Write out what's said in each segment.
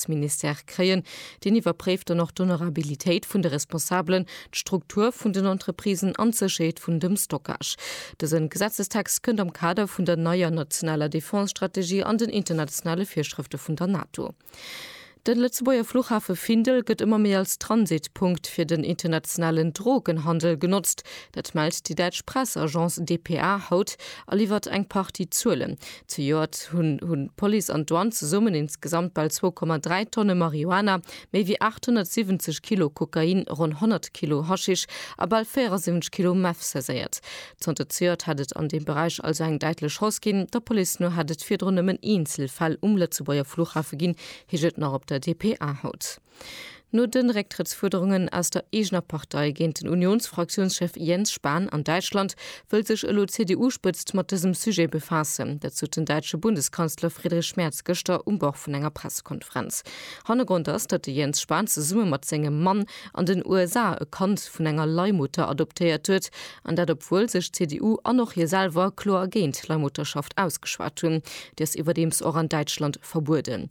Wirtschaftsministère kréien. Deen iwwerpréift dann och d'Honorabilitéit vun de Responsabelen, d'Struktur vun den Entreprisen an d'Sécherheet vun dem Stockage. Dëse Gesetzestext kënnt am Kader vun der neier nationaler Defense-Strategie an den internationale Virschrëfte vun der NATO. De Lëtzebuerger Fluchhafe Findel gëtt ëmmer méi als Transitpunkt fir den internationalen Drogenhandel genotzt. Dat mellt déi däitsch Press-Agence dpa haut a liwwert eng Partie Zuelen. Zejoert hunn hunn d'Police an d'Douane zesummen insgesamt bal 2,3 Tonne Marihuana, méi wéi 870 Kilo Kokain, ronn 100 Kilo Haschisch a bal 74 Kilo Meth saiséiert. Zanter zejoert hätt et an deem Beräich also eng däitlech Hausse ginn. Der Police no hätt et virdrun nëmmen eenzel Fäll um Lëtzebuerger Flughafe ginn, heescht et nach op der dpa haut. No de Récktrëttsfuerderungen aus der eegener Partei géint den Unionsfraktiounschef Jens Spahn an Däitschland wëll sech elo d'CDU-Spëtzt mat dësem Sujet befaassen. Dat sot den däitsche Bundeskanzler Friedrich Merz gëschter um Bord vun enger Pressekonferenz. Hannergrond ass, datt de Jens Spahn zesumme mat sengem Mann an den USA e Kand vun enger Leihmutter adoptéiert huet, an dat obwuel sech d'CDU an och hie selwer kloer géint d'Leihmutterschaft ausgeschwat hunn. Déi ass iwwerdeems och an Däitschland verbueden.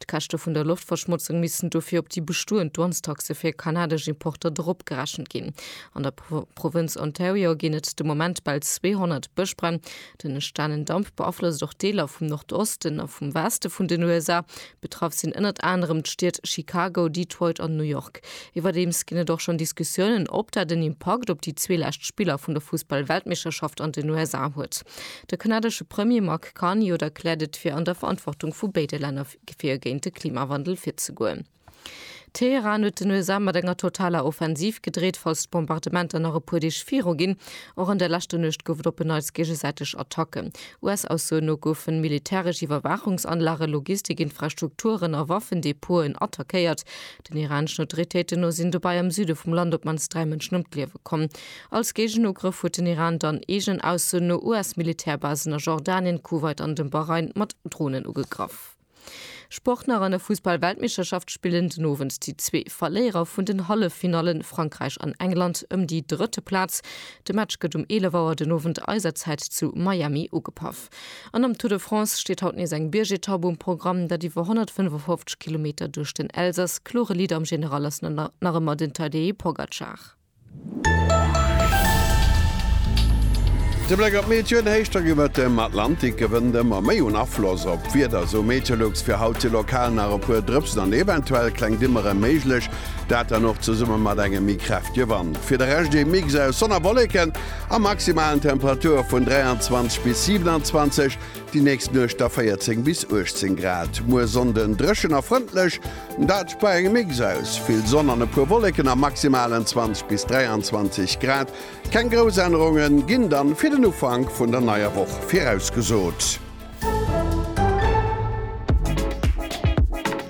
D'Käschte vun der Loftverschmotzung missten dofir op déi bestoend Douanestaxe fir kanadesch Importer dropgerechent ginn. An der Provënz Ontario ginn et de Moment bal 200 Bëschbränn. Den entstanen Damp beaflosst och Deeler vum Nordosten a vum Weste vun den USA. Betraff sinn ënnert anerem d'Stied Chicago, Detroit an New York. Iwwerdeems ginn et och schonn Diskussiounen, ob dat en Impakt op déi zwee lescht Spiller vun der Fussball-Weltmeeschterschaft an den USA huet. De kanadesche Premier Mark. Kann jo da klärt et fir an der Verantwortung vu béide Länner fir géint de Klimawandel virzegoen. Teheran huet den USA mat enger totaler Offensiv gedreet, falls d'Bombardementer nach e puer Deeg viru ginn. Och an der leschter Nuecht gouf et op en Neits géigesäiteg Attacken. US-Aussoen no goufen militäresch Iwwerwaachungsanlage, Logistik-Infrastrukturen a Waffendepoten attackéiert. Den iraneschen Autoritéiten no sinn dobäi am Süde vum Land op d'mannst dräi Mënschen ëm d'Liewe komm. Als Géigenugrëff huet den Iran dann, eegen Aussoen no, US-Militärbasen a Jordanien, Kuwait an dem Bahrain mat Dronen ugegraff. Sport nach an der Fussball-Weltmeeschterschaft spillen den Owend déi zwee Verléierer vun den Halleffinallen, Frankräich an England, ëm déi drëtte Plaz. De Match gëtt um 11 Auer den Owend eiser Zäit zu Miami ugepaff. Etapp. An am Tour de France steet haut nees eng Biergetapp um Programm. Dat iwwer 155 Kilometer duerch den Elsass. Klore Leader am General ass nach ëmmer den Tadej Pogacar. De Bléck op d'Meteoen, Héichdrack iwwert dem Atlantik gewënnt ëmmer méi un Afloss op d'Wieder, esou Meteolux. Fir haut si lokal nach e puer Drëpsen an eventuell kleng Dimmere méiglech, dat dann och zesumme mat engem méi kräftege Wand. Fir de Rescht ee Mix aus Sonn a Wolleken. a maximalen Temperature vun 23 bis 27, déi nächst Nuecht da 14 bis 18 Grad. Muer Sonnden dréchen a frëndlech, dat bei engem Mix aus vill Sonn an e puer Wolleken a maximalen 20 bis 23 Grad. Keng grouss Ännerunge ginn dann fir den Ufank vun der neier Woch virausgesot.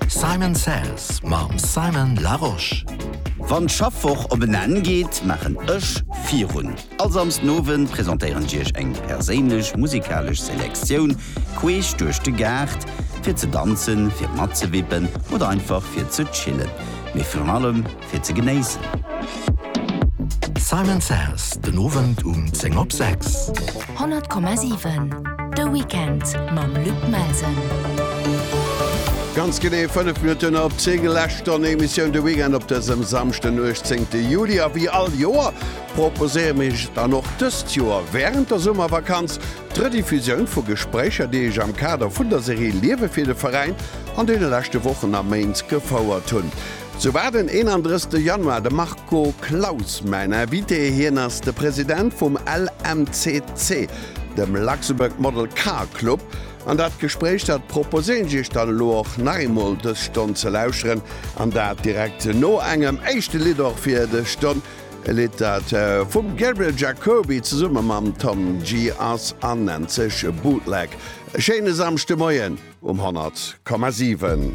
Simon Says mam Simon Larosche. Wann d'Schaffwoch op en Enn geet, maachen ech virun. All Samsden Owend presentéieren ech iech eng perséinlech musikalesch Selektioun queesch duerch de Gaart, fir ze danzen, fir matzewippen oder einfach fir ze chillen, mee virun allem, fir ze genéissen. Simon Says den Owend um 10 op 6. 100,7 De Weekend mam Luc Melsen. Ganz genee 5 Minutten op 10 Lächt an Emissioun de Weekend op dësem Samschden 18. Juli a wéi all Joer proposéiere mech dann och dëst Joer wärend der Summervakanz d'Rediffusioun vu Gespréicher, déi ech am Kader vun der Serie Liewe fir de Veräin an deene leschte Wochen a Méint gefouert hunn. Sou war den 31 Januar de Marco Claus mäin Invité. Hien ass de President vum LMCC, dem Luxembourg Model Car Club, an dat Gespréich, dat proposéieren ech Iech dann elo och nach eemol dës Stonn ze lauschteren, an dat direkt no engem éischte Lidd och fir dës Stonn, e Lidd, dat vum Gabriel Jacoby zesumme mam Tom Gee ass an nennt sech Bootleg. E schéine Samschdemoien um 100,7.